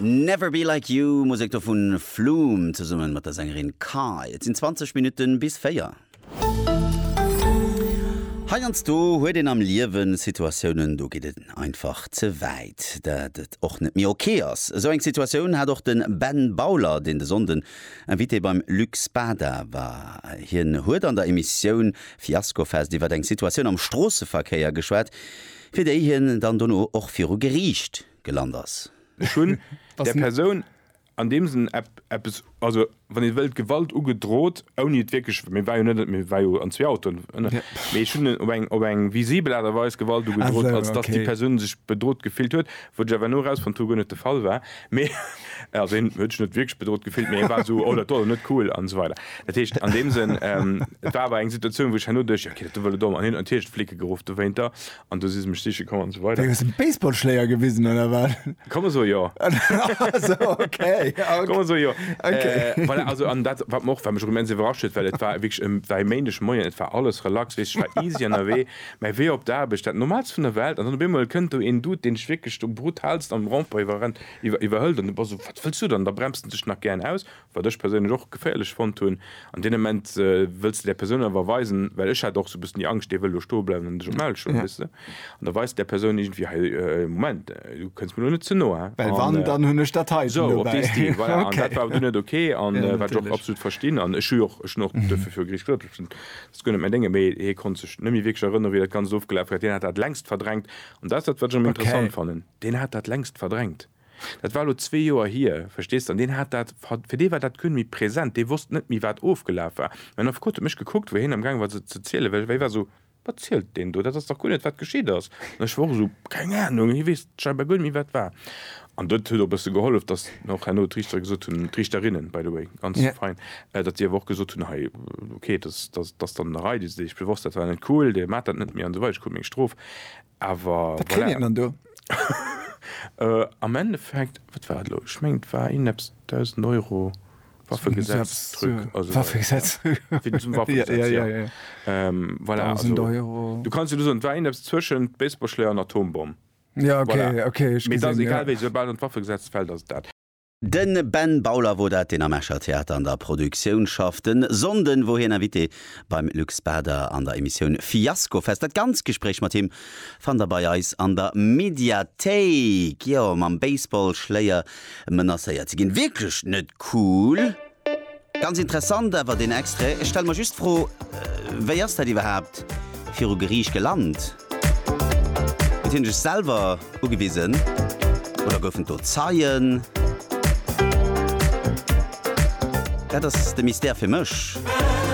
Never Be Like You, Musek do vun Flume zesummen mat der Sängerin Kai. Et sinn 20 Minutten bis 4. Heiansdo huet een am Liewen Situatiounen, do geet et einfach ze wäit, dat et och net méi ok ass. Esou eng Situatioun hat och de Ben Bauler, deen de Sonnden Invité beim Luc Spada war. Hien huet an der Emissioun Fiaskofest iwwert eng Situatioun am Stroosseverkéier geschwat, Fir déi hien dann dono och viru Geriicht gelant ass. Ech hunn der Persoun an deem Sënn eppes, also wann ee wëllt, Gewalt ugedrot, ouni et wierklech, mir war jo net, mir war jo an zwee Autoen, mee ech hunn op eng, op eng visibel Aart a Weis Gewalt ugedrot, als datt déi Persoun sech bedrot gefillt huet, Wou ech awer elo erausfonnt hu, guer net de Fall war, mee, also hien huet sech net wierklech bedrot gefillt, mee hie war esou, oh, dat do ass awer net cool an esou weider. Dat heescht, an deem Sënn, et war awer eng Situatioun, wou ech herno duecht, jo, okay, dat do wëll et och, an hien huet natierlech d'Flicke geruff dowéinter an du si se mech siche komm an esou weider. Hues dem Baseballschléier gewisen oder wat? Komm esou, jo. Esou, okay. Komm esou, jo. Voilà, also an dat, wat mer och, wat mech och immens iwwerrascht huet, well et war wierklech, et war e Méindegmoien, et war alles relax, weess ech war easy ënnerwee. Mäi Wee op d'Aarbecht, dat Normaalst vun der Welt, an dann op eemol kënnt do een Dude, deen dech wierklech do brutalst am Rond-point iwwerrennt, iwwerhëlt, an du bass esou, wat wëlls du dann? Da bremst en dech nach gären aus, wat ech perséinlech och geféierlech fonnt hunn. An deem Ament wëlls de där Persoun awer weisen, well ech hat och esou e bëssen déi Angscht, dee wëll do stoe bleiwen an dech op d'Maul schloen, weess de. An da weist de där Persoun iergendwéi, hei, Moment, du kënns mir elo net ze no, hä? Well wann, dann hunn ech dat heiten dobäi. Esou, op dee Stil, voilà. An dat war awer du net ok, wat ech och absolut verstinn. An ech hu jo och, ech hunn och duerfir viru Geriicht geklot, Ech kann et mir denken, mee hie konnt sech net méi wierklech erënnere wéi dat Ganzt ofgelaf war. Deen hat dat längst verdrängt. An dat ass dat, wat ech am interessant fannen. Deen hat dat längst verdrängt. Dat war elo zwee Joer hier, verstees de? An deen hat dat, fir dee war dat guer net méi present. Dee wosst net méi, wat ofgelaf war. Mäin Affekot huet mech gekuckt, wou hien am gaange war se ze zielen, well hie war esou, Wat zielt deen do? Dat ass dach guer net, wat geschitt ass. An ech war och esou, Keng Anung. Hie weess scheinbar guer net méi, wat war. An dat huet och e bësse gehollef, datt och herno d'Richter gesot hunn, d'Richterinnen, by the way, ganz fein, datt déi awer och gesot hunn, hei, okay, datt ass dann an der Rei, déi si sech bewosst, dat war net cool, dee maacht dat net méi an esou weider, ech krut meng Strof, awer voilà. Wat kritt een dann do? Am Endeffekt, wat war dat elo? Ech mengen, et war iergendepps 1.000 Euro Waffegesetz-Truc. Waffegesetz. Wéinst dem Waffegesetz, jo. Voilà, also, du kanns jo elo soen, et war iergendepps zwëschent Baseballschléi an Atombomm. Ja, okay, voilà. okay, ech gesin, ja. Egal wéi, soubal an d'Waffegesetz fällt, ass et dat. De Ben Bauler wor dat, deen am Escher Theater an der Produktioun schafft. En Sonnden wor hien Invité beim Luc Spader an der Emissioun Fiaskofest. Dat ganz Gespréich mat him fannt der bei eis an der Mediathéik. Jo, mam Baseball-Schléier menacéiert ze ginn, wierklech net cool. Ganz interessant awer deen Extrait. Ech stelle mer just d'Fro, wéi ass dat iwwerhaapt viru Geriicht gelant? Huet hien sech selwer ugewisen oder goufen et do Zeien? Dat ass de Mystère fir mech.